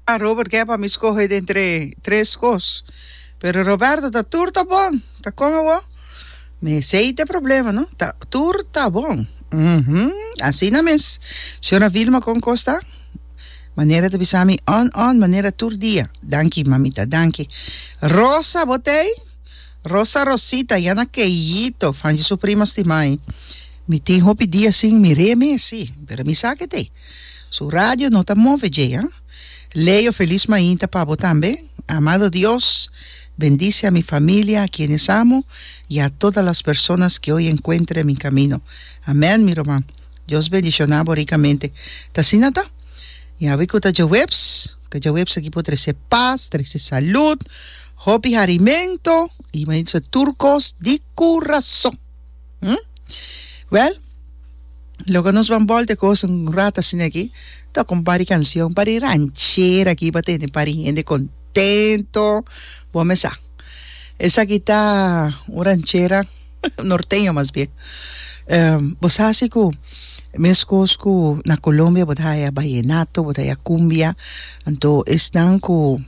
Ah Robert ke pa mi skohe den tre tres kos pero Roberto ta tur ta bon ta kon awo mesey ta e problema no ta tur ta bon uhmm asina mes shona Vilma kon kos ta manera ta bisa mi on on manera tur dia danki mamita danki Rosa bo tey Rosa Rosita yana keyito fanchi su prima stima mi tin hopi dia sin mire mes si pero mi sa ke tey. Su radio no ta move dje, ha? Leo felis mainta pa bo tambe. Amado Dios, bendice a mi familia, a quienes amo, y a todas las personas que hoy encuentro en mi camino. Amen, mi ruman. Dios bendiciona bo ricamente. Ta asina ta. Y awe cu ta djaweps, ca djaweps aki por trece paz, trece salud, hopi harimento, y manito tur cos di curazon. Hm? Wèl, loke nos ban bòlt e kos un rat asina aki, tok un par di kanshon, par di ranchera aki pa tene par di hende kontento. Bo me sa, esaki ta un ranchera norteño mas bien. Bo sa si ku meskos ku na Colombia bo ta haya bayenato, bo ta haya kumbia, anto esnan ku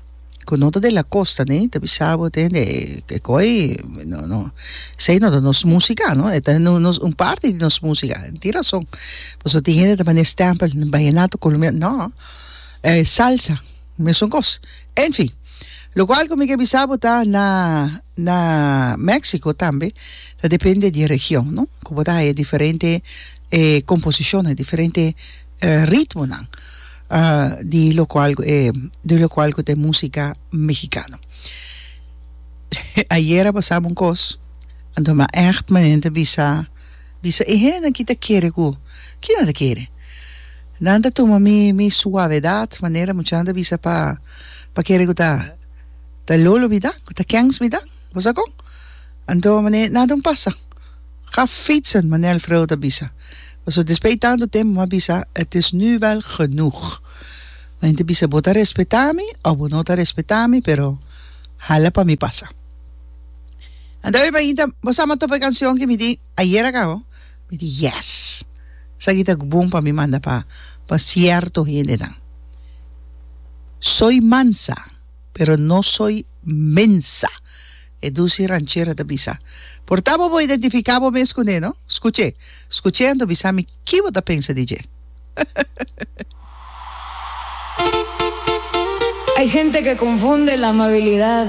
cu no ta de la costa ne ta bisa bo te hende e koi no no esei no ta nos musica no eta no nos un parti di nos musica tin rason pasobra tin hende ta manda e stempel bayenato colombiano no e salsa mesun cos enfin locual cu mi ke bisa bo ta na na Mexico tambe ta depende di e region no cu bo ta haya diferente e composiciones diferente ritmonan di lokual di lokual ku ta e musika mexikano. Ayera a pasaba un kos, anto mi a ègt manera ta bisa bisa e hende aki ta kere ku ki nan ta kere? Nan ta tuma mi mi suavedat manera muchanan ta bisa pa pa kere ku ta ta lolo mi ta ku ta kèns mi ta, boso a kon? Anto manera nan ta un pasa. Ga fietsen, Manel Freud a bisa. Paso despey tanto tempo bo a bisa, het is nu wel genoeg. Bo ente bisa bo ta respeta mi of bo no ta respeta mi, pero hala pa mi pasa. Anta Oiba Inta, bo sa ma topa e cancion ke mi di ayer aka ho? Mi di yes! Esaki ta gbon pa mi manda pa pa cierto hendenan. Soy mansa, pero no soy mensa. E dusi ranchera ta bisa, Por ta bo bo identifica bo mes cu ne, no? Scuche, scuche anto bisa mi ki bo ta pensa di dje. Hay gente que confunde la amabilidad.